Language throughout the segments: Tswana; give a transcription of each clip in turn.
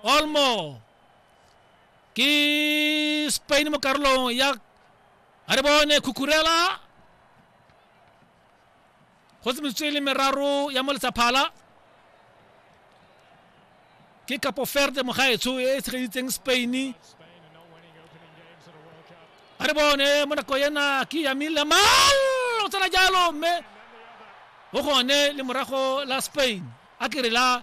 Olmo. Ke Spain mo karolong ya a re bone Cucurella. Go se metsotso e le meraro ya mo letsaphala. Ke Capo Verde mogaetsho e e tshegeditseng Spain. A re bone mo nako ena ke Yamil Lamal o tsena jalo mme o gone le morago la Spain a kere la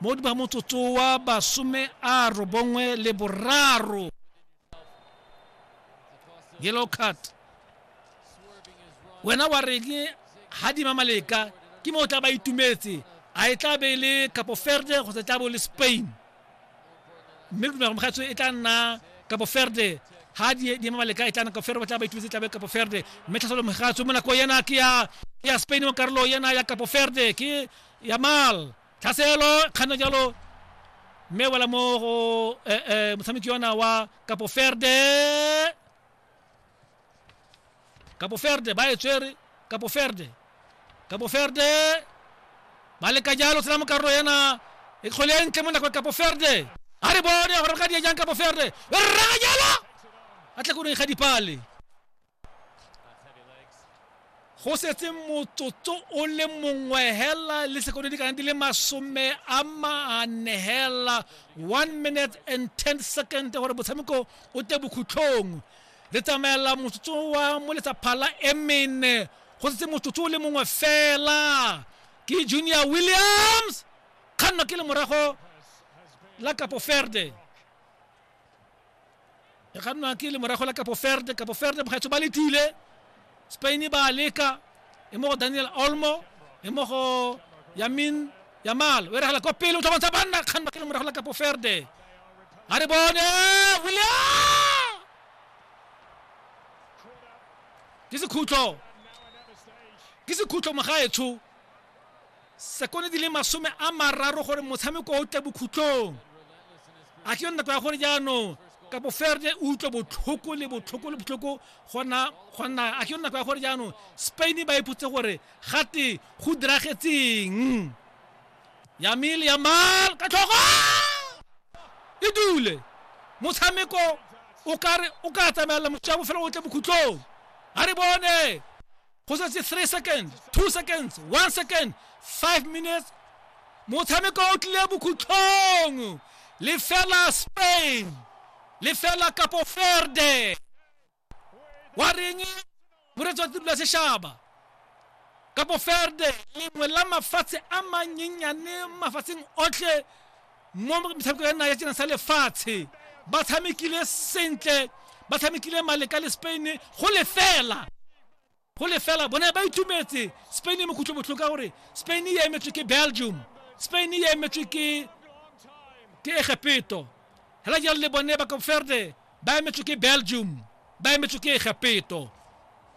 mo ba motsotso wa basome a robongwe le boraro yellow card wena wa reng ga di mamaleka ke mo o tla ba itumetse a e tla be e le capo verde kgotsa e tla bo le spain mme ke dumela gore mogatso e tla nna kapo ferde ha di di ema maleka e tla nna kapo ferde ba tla ba itumetse tlabe kapo ferde mme tlhasolo mogatso mo nako yena ke ya ya spain mo karolo yena ya kapo ferde ke ya mal tlhaselo kganna jalo mme wela mo go eh, eh, motshameki yona wa kapo ferde Cabo Verde ba e tswere Cabo Verde Cabo Verde ba leka jalo tsena mo karolo ena e kgole e ntle mo nako ya Cabo Verde a re bone gore ka di jang Cabo Verde e rraga jalo a tle koreng ga dipale go setse motsotso o le mongwe hela le sekono di kana di le masome a mane hela one minute and ten second gore motshameko o te bokhutlhong Le tsamaela motsotso wa mo letsa phala e mene. Go setse motsotso o le mongwe fela. Ke Junior Williams. Kganno ke le morago la Capo Verde. E kgannwa ke le morago la Capo Verde. Capo Verde bogaetsho ba letile. Spain e ba leka e mo go daniel olmo e mo go yamin yamal o e regela kwa pele o tlhobantsha banna kgang ba ke le morago la kapo ferde a re bone william ke sekhutlo ke sekhutlo mogaetsho Sekono di le masome a mararo gore motshameko o tle bokhutlong. A ke nako ya gore jaanong kapo ferde o utlwe botlhoko le botlhoko le botlhoko gona gonna a ke nako ya gore jaanong spain ba ipotse gore gate go diragetseng yamile yamal ka tlhogo e dule motshameko o ka re o ka tsamaela motswa bofelo o tle bokhutlong a re bone go setse three seconds two seconds one second five minutes motshameko o tlile bokhutlhong lefela spain lefela kapo ferde wa reng moretsi wa tiro ya sešaba kapo ferde lengwe la mafatshe a manyenyane mafatsheng otlhe mo metshameko ya nna ya tsena sa lefatshe ba tshamekile sentle ba tshamekile maleka le spain go lefela go lefela bone ba itumetse spain e mokhutlho botlhoko ka gore spain e emetswe ke belgium spain e emetswe ke ke egepeto hela jalo le bone ba kopferde ba emetswe ke belgium ba emetswe ke egapeto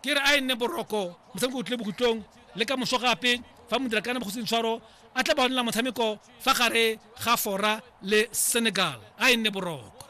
ke re a e nne boroko motshameko o tlile bokhutlong le ka moso gape fa modirakaana mo go sentshwaro a tla ba onela motshameko fa gare ga fora le senegal a e nne boroko